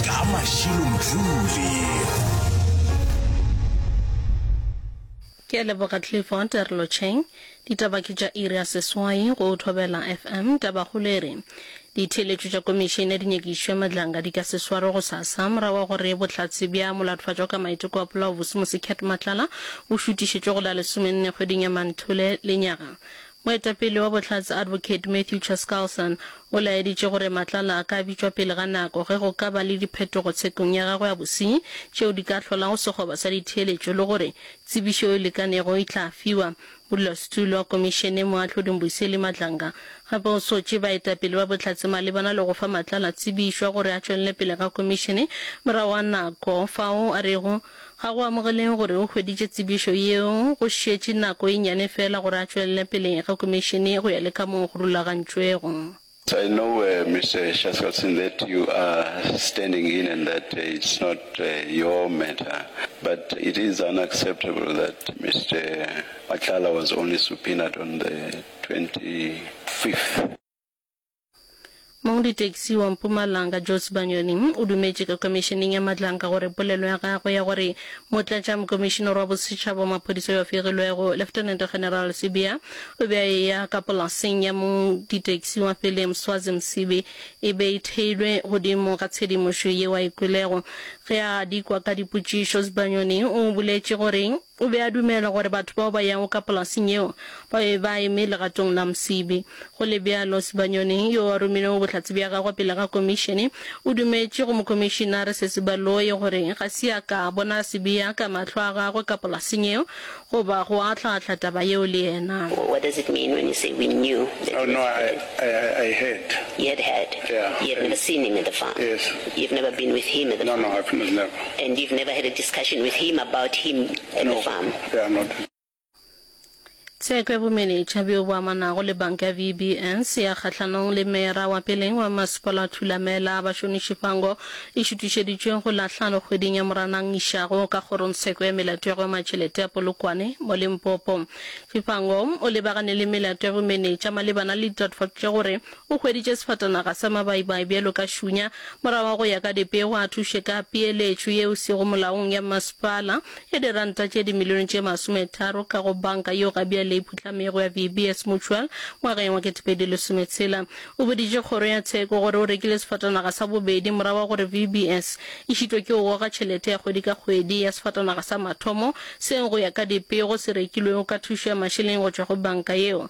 ka mašilo mdlule ke a leboga clifford relotšheng ditaba ke tša iri ya seswai go thobela fm tabakgolo e re ditheeletšo tša komišene ya dinyakišo ya madlanga di ka se swarwe go sasa morago wa gore bohlatse bja molatofadjwa ka maiteko a polaobose mosecat matlala o šutišetšwe go la lesomenne kgweding ya manthole lenyaga Moetapele wa Bohlatse Advocate Matthew Chaskalson o laeditše gore Matlala a ka bitšwa pele ga nako ge go ka ba le diphetogo tshekong ya gagwe ya bosenyi tšeo di ka hlolago sekgoba sa ditheeletšo le gore tsebišo e lekanego e tla fiwa modulasetulo wa komišene Moahlodi Mbuyiseli Madlanga gape o sotše baetapele ba Bohlatse malebana le go fa Matlala tsebišwa gore a tšwelele pele ga komišene morago ga nako fao a rego Ga go amogeleng gore o hweditše tsebišo yeo go šetše nako e nnyane feela gore a tšwelele pele ga Komišene go ya le kamoo go rulagantšwego. I know Mister Shaskalson that you are standing in and that it's not your matter but it is unacceptable that Mister Matlala was only subpoenaed on the 25th. Mong ditaxi wa Mpumalanga, Joyce Banyoni, o dumetše ka Khomišeneng ya Matlanga gore polelo ya gagwe ya gore Motlatšamokomišenare wa Bosetšhaba wa Maphodisa yo a fegilwego, Lieutenant General Sibiya, o be a eya ka polaseng ya mong ditaxi wa pele, Mswazi Msibi, e be e theilwe godimo ga tshedimošo yeo a e kwelego. Ge a dikwa ka dipotšišo, Sibanyoni o boletše gore O be a dumela gore batho bao ba yago ka polaseng yeo ba be ba eme legatong la Msibi. Go le bjalo, Sibanyoni, yo a romilego bohlatse bja gagwe pele ga komišene, o dumetše go Mokomišinare Sesi Baloyi gore ga se a ka a bona Sibiya ka mahlo a gagwe ka polaseng yeo goba go ahlaahlaa taba yeo le yena. What does it mean when you say we knew that he was dead? Oh, no, I heard. You had heard? Yeah. You had never seen him at the farm? Yes. You've never been with him at the farm? No, no, I've never. And you've never had a discussion with him about him and the farm? No, we are not. Tsheko ya bomenetša bjo bo amanago le banka ya VBS ya kgahlanong le Meyara wa pele wa Masepala Thulamela Bashoni Shivhango e šutišeditšwe go la hlano kgweding ya Moranang išago ka kgorongtsheko ya melato ya go ema tšhelete ya Polokwane mo Limpopo. Shivhango o lebagane le melato ya bomenetša malebana le ditatofatšo tša gore O hweditše sefatanaga sa mabaibai bjalo ka šunya. Morago ga go ya ka dipego, a thuše ka peeletšo ye e sego molaong ya masepala ya diranta tše dimilione tše masometharo ka go banka yeo ga bjale e phuhlamego ya VBS Mutual ngwageng wa ketepedi lesometshela. O boditše kgoro ya tsheko gore o rekile sefatanaga sa bobedi morago ga gore VBS e šitwe ke go goga tšhelete ya kgwedi ka kgwedi ya sefatanaga sa mathomo seo go ya ka dipego se rekilwego ka thušo ya mašeleng go tšwa go banka yeo.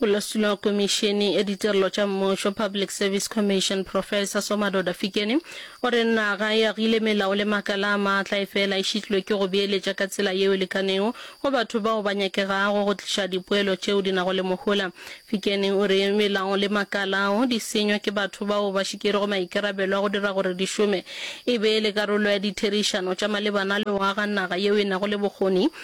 Molesino komišene ya ditirelo tša mmušo Public Service Commission Professor Somadoda Fikeni o re naga e agile melao le makala a maatla e fela e šitlilwe ke go beeletša ka tsela yeo e lekanego go batho bao ba nyakegago go tliša dipoelo tšeo di nago le mohola. Fikeni o re melao le makala ao di senywa ke batho bao ba šikerego maikarabelo a go dira gore di šome e be le karolo ya ditherišano tša malebana le go aga naga yeo e nago le bokgoni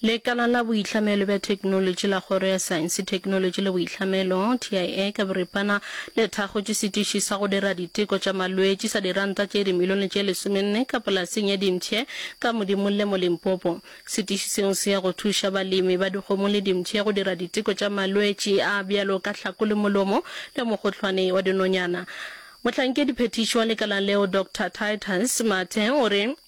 Lekala la Boitlhamelo bja Theknolotši la Kgoro ya Saense, Theknolotši le Boitlhamelo, TIA, ka boripana le thakgotše setiši sa go dira diteko tša malwetši sa diranta tše dimilione tše lesomenne ka polaseng ya dimpšhe ka Modimolle mo Limpopo. Setiši seo se ya go thuša balemi ba dikgomo le dimpšhe go dira diteko tša malwetši a bjalo ka tlhako le molomo le mogohlwane wa dinonyana. Mohlankedi phethiši wa lekala leo, Doctor Titus Mathe o re,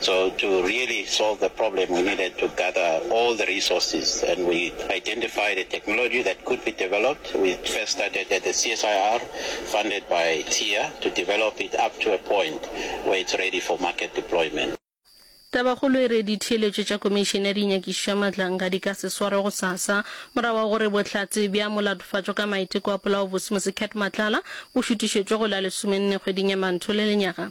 So to really solve the problem we needed to gather all the resources and we identified a technology that could be developed. We first started at the CSIR funded by TIA to develop it up to a point where it's ready for market deployment. Tabakgolo e re ditheeletšo tša Komišene ya Dinyakišišo ya Matlanga di ka se swarwe gosasa morago ga gore bohlatse bja molatofatšo ka maiteko a polaobosemose Cat Matlala bo šutišetšwe go la lesomenne kgweding ya Mantho le lenyaga